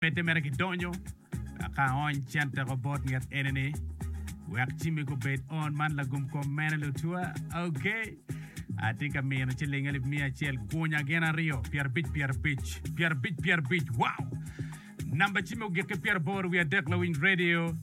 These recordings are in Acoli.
Pete mere gidonyo ka ony cen teko bot nget ene ni wek cimi gubed on man lagum kom mene lutua ok atye ka mino ciling alip miya acel gunya gin aryo pyerabic pyerabic pyerabic pyerabic wow namba cimi ogiki pyeraboro wiye adek lawiny radio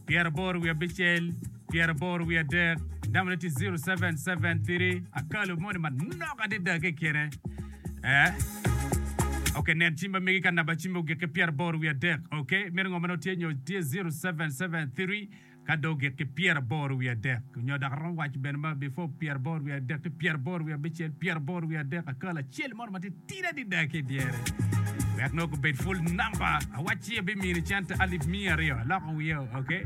pyeraboro wiye abicel Pyeraboro wiye adek, namone tye ziro seven seven tiri. Akalo moni manok adada ki kine. Eh. Ok, nen cim ma megi ka namba cim ogikke pyeraboro wiye adek. Ok, mito ngo ma nongo tye nyo tye ziro seven seven tiri ka dong ogikke pyeraboro wiye adek. Nyo dok aromo waco bene ma before pyeraboro wiye adek ki pyeraboro wiye abicel, pyeraboro wiye adek akalo acel moni ma tye tidi adada ki idyere. Wek nongo gubed full namba. Awacci abimini cente alip miya aryo. Aloko wiya, ok.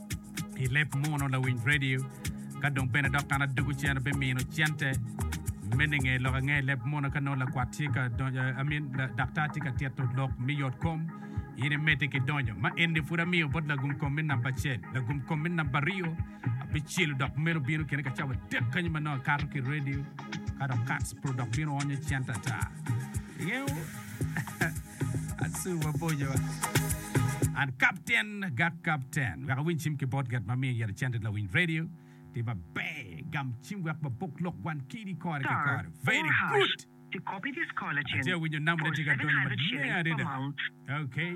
I leb muno lawiny radio ka dong bene dok an adwogo ci en obimino cente me ninge lok ange leb muno ka nongo lakwat tye ka donyo I mean daktar tye ka tito lok me yot kom in imedde ki donyo ma eni pud amiyo bot lagum kom me namba acel lagum kom me namba aryo abicelo dok meno bino kine ka cawa dek kanyo ma nongo akato ki radio ka dok kats puro dok bino onyo cente ata ingeyo Asu waboco. An kapten, gak kapten. Wek awiny cim ki botgat ma miyo yero cente lawiny radio, tye maber gam cim wek wabok lok wan kidi kore ki kore. Very good! Atye awinyo namone tye ka donyo maleng adada. Okay.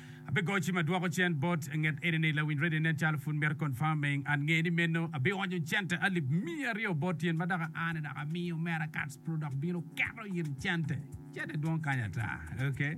Abigoyo cim adwoko cen bot nget enini lawiny radio nen calo pud mito confirming and nge ni meno abionyo cente alip miya aryo bot tyen ma dok a ni dok amiyo Americans pro dok bino keto in cente. Cente dwong kany ata. Okay.